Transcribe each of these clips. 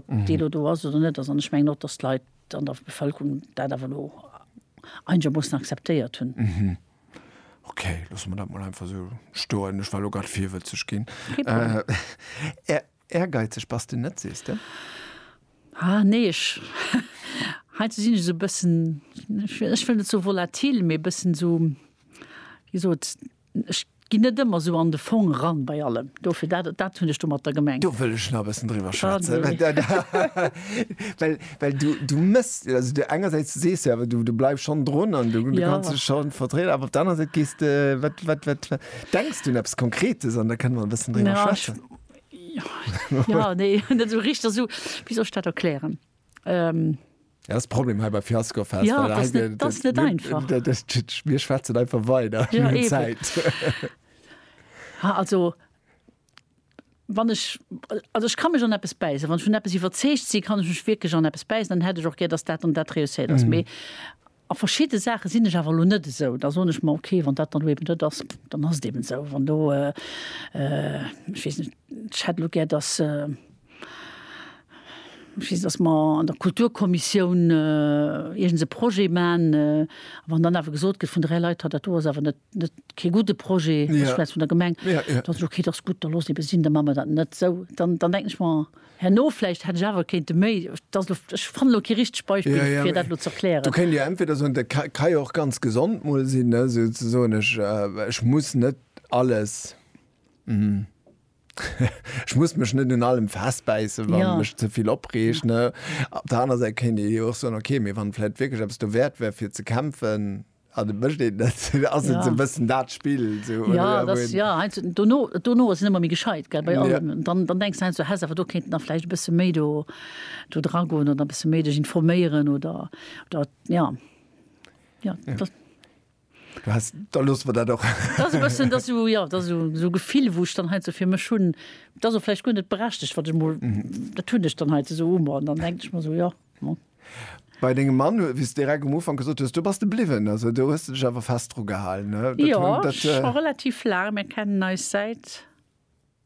Ob déi elo do ass oder net ass, an ech mengen och, datt d'Leit an der Bevëlkerung dat awer elo einegermoossen akzeptéiert hunn. Okay, loosse mer dat mol einfach esou stoen. Ech war elo grad virwëtzeg ginn. Kee Problem. Ehrgeizeg bass de net, sees de? Ah, nee, ech, heiansdo sinn ech esou e bëssen, ech wëll net sou volatil, mee e bëssen esou, wéi gesot, Ech ginn net ëmmer esou an de Fong eran bei allem. Dofir, dat, dat hunn ech domatter gemengt. Do wëll ech nach e bëssen driwwer schwätzen. Well, well du, du mëss, also du engersäits sees du awer, du, du bleifs schonn drun an du, du kanns dech schonn vertrieden, awer op der anerer Säit gees de, wat, wat, wat, wat denks du un eppes Konkretes an da kënne mer e bëssen driwwer schwätzen. Jo, jo, nee, net esou richteg esou, wéi soll ech dat erklären? Dat ass de Problem hei bei Fiasco Fest. Ja, et ass net, et ass net einfach. Mir schwätzen einfach weider. Jo, eben. Zäit. Ha, also, wann ech, also ech ka mech an eppes bäissen. Wann ech vun eppes iwwerzeegt sinn, kann ech mech wierklech an eppes bäissen. Dann hätt ech och gär, datt dat an dat reusséiert ass. Mee a verschidde Saache sinn ech awer elo net esou. Da soen ech mer, okay, wann dat dann elo eben net ass, dann ass et eben esou. Wann elo, ech weess net, ech hätt elo gär, datt, Ech weess, datt mer an der Kulturkommissioun iergends e Projet maachen. A wann dann awer gesot gëtt vun dräi Leit, ha dat do ass awer net kee gudde Projet, ech schwätz vun der Gemeng, da soen se, okay, dat ass gutt, da loosse eebe sinn, da maache mer dat net. Esou, dann denken ech mer, herno vläicht hätt ech awer kéinte méi, dat ass elo, ech fannen elo kee richtegt Beispill, fir dat elo ze erklären. Do kéint Dir entweder soen, dat ka jo och ganz gesond mol sinn, esou ze soen, ech muss net alles. Ech muss mech net un allem festbäissen, wann ja. mech ze vill opreegt. Ja. Op der aner Säit kéint ee jo och soen, okay, mee wann vläit wierklech eppes do wäert wär fir ze kämpfen, Ah, du bëscht een dat ass ja. ze bëssen dat Spill so, ja, das, ja, ein, dono, dono ass ëmmer méi gescheit gell, bei allem ja. dann, dann denkst ein, so, has awer do kéint nach vläicht bësse méi do do dragon oder bësse méi dech informéieren oder dat ja, ja, ja. Das, Du hast, da loosse mer dat och. Dat ass e bëssen, dat ass esou, jo, dat ass esou, esou e Gefill, wou ech dann heiansdo fir mech hunn, dat ass och vläicht guer net berechtigt, wat ech emol, dat hunn ech dann heiansdo esou u mer an dann denken ech mer esou, jo, bon. Bei dengem Mann, hu, wéi s de direkt um Ufank gesot hues, do bass de bliwwen, also do hues de dech awer fest drugehalen, ne? Dat hunn, Jo, dat, scho relativ laang. Mir kennen eis säit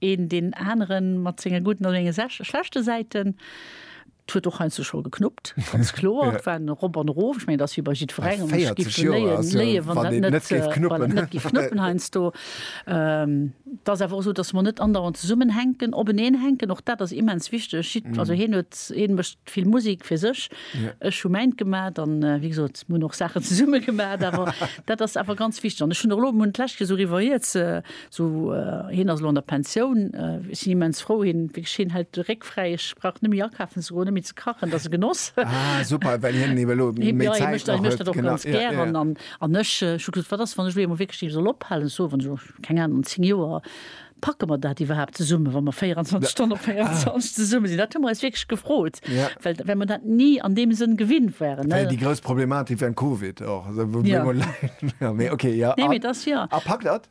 Een deen aneren mat senge gudden a senge schlechte Säiten. Et huet och heiansdo scho geknuppt, ganz kloer. Et war en Erop an Erof. Ech mengen, et ass wéi bei jiddwerengem, wann et giff léien, wann et net géif knuppen heiansdo. Et ass awer och esou, datt mer net andauernd zesummenhänken, openeen hänken. Och dat ass immens wichteg. Also hien huet, hie mécht vill Musek fir sech, ech hu mäint gemat. An wéi gesot, mer hunn och Saachen zesumme gemat. Awer dat ass awer ganz wichteg. An ech hunn och elo, mer hunn d'lescht Kéier esou eriwwer hie Sou, hien ass elo an der Pensioun. Ech sinn immens frou, hien, wierklech, hien hält de Réck fräi. Ech brauch net méi akafen ze goen, net méi ze kachen, dat ass e Genoss. Ah, super, well hien ebe elo méi Zäit nach huet. Hie mécht dat, hie mécht dat och ganz gären. An, an ech, ech hu gesot, wat ass, wann ech elo eemol wierklech deem soll ophalen? Ech soen, wann ech elo, keng Ahnung, an zéng Joer, packe mer dat iwwerhaapt zesummen, wa mer 24 Stonnen op 24 zesumme sinn? Dat hu mer eis wierklech gefrot, well, well mer dat ni an deem Sënn gewinnt waren, ne? Well déi grouss Problematik wärend Covid och, wou mir emol, mee okay, jo. Nee, mee et ass, jo. A packt dat?